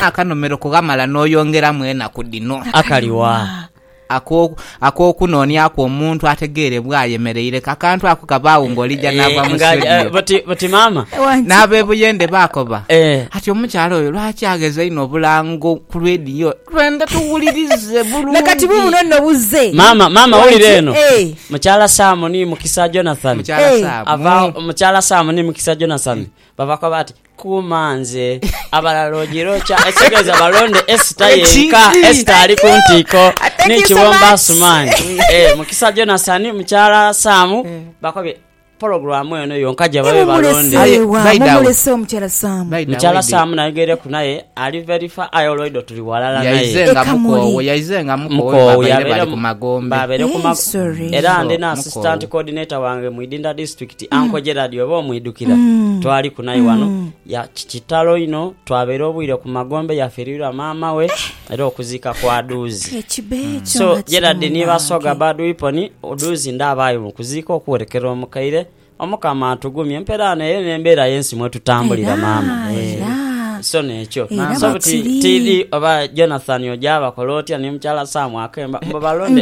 Akanomero kughamala n'oyongeramu enaku dhino. Akali wa? Ak'okunoonia ku omuntu ategeere bw'ayemereire. Akantu ako kabaagho ng'olija naava mu situediyo. Bati maama. N'ab'e Buyende baakoba ati, Omukyala oyo lwaki agheza inho obulango ku lwediyo? Twendha tuwulirize bulungi. Na kati buubuno nno buzze. Maama, maama wulira eno. Mukyala Saamu ni Mukisa Jonathani. Mukyala Saamu. Mukyala Saamu ni Mukisa Jonathani bavakoba ati. Kuuma nze. Abalala ojirookya ekitegeeza balonde Esita yenka. Esita ali ku ntiiko ni Kibomba Asumaani. Eh, Mukisa Jonasani, Mukyala Saamu eh. bakobye pologulaamu eno yonka gye babe balonde mukyala saamu nayogereku naye ali verifa aye olwaido tuli walala nayemukowoyabeere ku magombe era ndi na assistant coordinator wange mu idinda district ti mm. Anko Gerard oba omwidukira mm. twali kunayi wano mm. ya kitalo ino twabeera obwire ku magombe yafirirwa maama we eh. era okuzika kwa duuzi eh, mm. so Gerard ni basoga bad weapon duuzi ndabaayi mu kuziika okuwerekera omukaire omukama atugumye empeera ano eyo n'embeera y'ensi mwetutambulira maama yeah. so nekyo so buti tv oba jonathan ojabakola otya ni mukyala samu akemba mbo balonde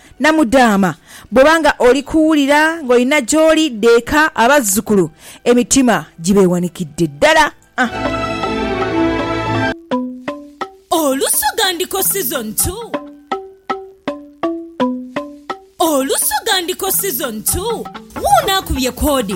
Namudhaama, Bw'oba nga oli kuwulira ng'olina gy'oli, dha eka abazzukulu emitima gibeewanikidde ddala. Olusoga Ndiko Season Two Olusoga Ndiko Season Two, Wuuno akubye koodi.